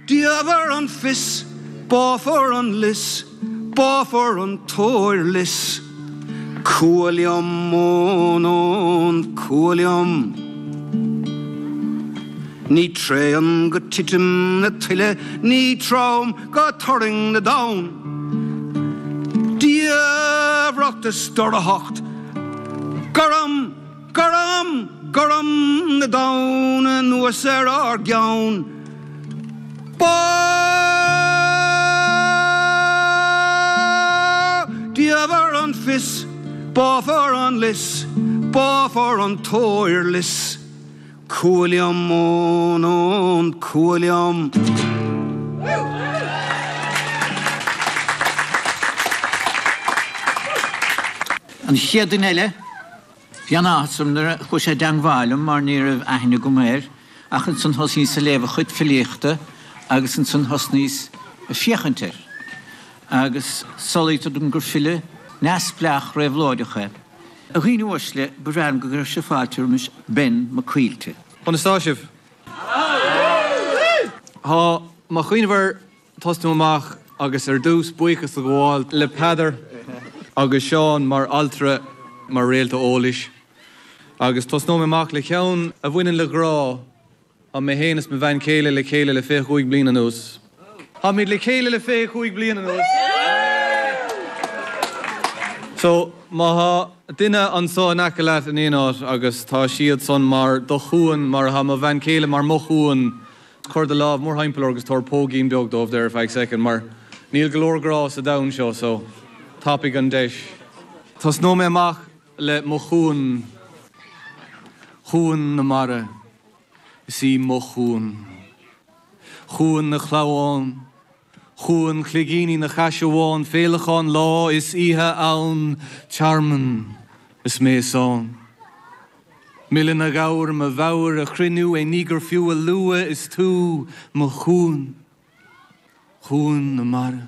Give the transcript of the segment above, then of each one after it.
Diamhair an fios, báfar an lios, báfar an t-óirlios. Cumha liom ón ón, cumha liom. Ní tréan go titim na tuile, ní trom go turraing na dtonn. Diamhracht is dorchacht, gorm. Gorm, gorm na dtonn anuas ar ár gceann. Bá diamhair an fios, báfar an lios, báfar an t-óirlios. Cumha liom ón ón, cumha liom. An chéad duine eile? Bhí an-áthas orm nuair a chuaigh sé i dteangmháil liom mar ní raibh aithne agam air ach ansan thosnaíos ag léamh a chuid filíochta agus ansan thosnaíos ag féachaint air agus samhlaítear dom gur file neamhspleách réabhlóideach é. A dhaoine uaisle, ba bhreá liom go gcuirfeadh sibh fáilte roimis Ben Mac Caoilte. Conas tá sibh? Tá mo chuimhne mhar. tosnú amach agus ar dtús buíochas a ghabháil le Peadar agus Seán mar altra, mar réalta eolais agus tosnóidh mé amach le ceann a bhaineann le grá. Tá mé féin is mo bhean chéile le chéile le fiche chúig bliain anuas. Táimid le chéile le fiche chúig bliain anuas. So, má thá duine anso in aice leat in aon áit agus tá siadsan mar do chuan, mar atá mo bhean chéile mar mo chuan, Cuir do lámh mórthimpeall orthu agus tabhair póigín beag dóibh there ar feadh soicind, mar níl go leor grá sa domhan seo, so tapaigh an deis. Tosnóidh mé amach le mo chuan, Cuan na Mara is í mo chuan, Cuan na Clamhán. Cuan cloigíní na caisearbhán féileacáin lá is oíche ann, tearmann is mé is ann. Milleann a ghabhair mo mheabhair, a chruinniú éinní gur fiú a lua is tú mo chuan, cuan na mara.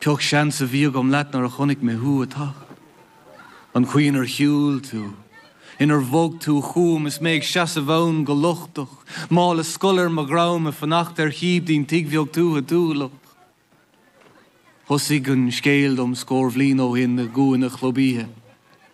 Cén seans a bhí agam leat nuair a chonaic mé thú ag teacht. An chaoi inar shiúil tú, inar bhog tú chugam is mé ag seasamh ann go lochtach, mála scoile ar mo dhroim ag fanacht ar shíob dtí an tigh bheag tuaithe tuathalach. Thosaigh an scéal dom scór bhliain ó shin i gcúinne chlub oíche.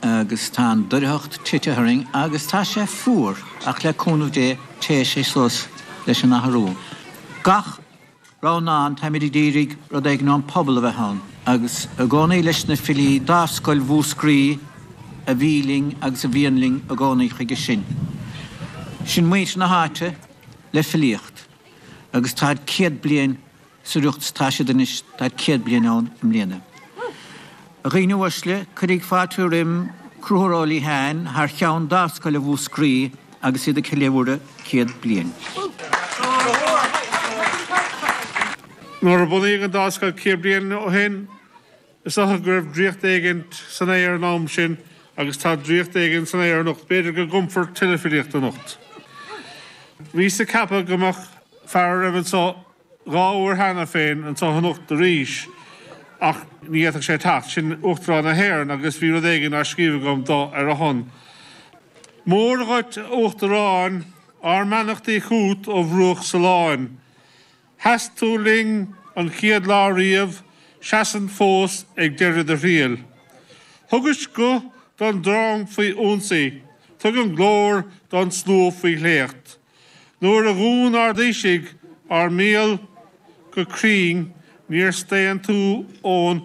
agus tá an doircheacht titithe orainn agus tá sé fuar ach le cúnamh Dé téifidh sé suas leis an athrú. Gach rogha ann táimid ag iarraidh rud éigin ón phobal a bheith ann agus i gcónaí leis na filí Dámhscoil Mhúscraí a bhí linn agus a bhíonn linn i gcónaí chuige sin. Sin muintir na háite le filíocht agus táid céad bliain atá siad anois tá céad bliain ann i mbliana. A dhaoine uaisle, cuirigí fáilte roim Conchúr Ó Liatháin thar cheann Dámhscoil Mhúscraí agus iad ag ceiliúradh céad bliain. Nuair a bunaíodh an Dámhscoil céad bliain ó shin, is dócha go raibh draíocht éigin san aer an am sin agus tá draíocht éigin san aer anocht, b'fhéidir go gcumfar tuilleadh filíochta anocht. Bhíos ag ceapadh go mbeadh fear a raibh anso Dhá uair cheana féin anseo anocht arís, ach ní fhéadfadh sé teacht. Sin Uachtarán na hÉireann agus bhí rud éigin scríofa agam dó ar a shon. Mora dhuit a Uachtaráin, ár mbeannachtaí chughat ó bhruach Suláin. Sheasaís linn an chéad lá riamh, seasann fós ag deireadh do thriail. Thugais guth don drong faoi ionsaí, tugann glór don slua faoi smacht. Nuair a dhún ár dtaoisigh a mbéal go cruinn níor staon tú ón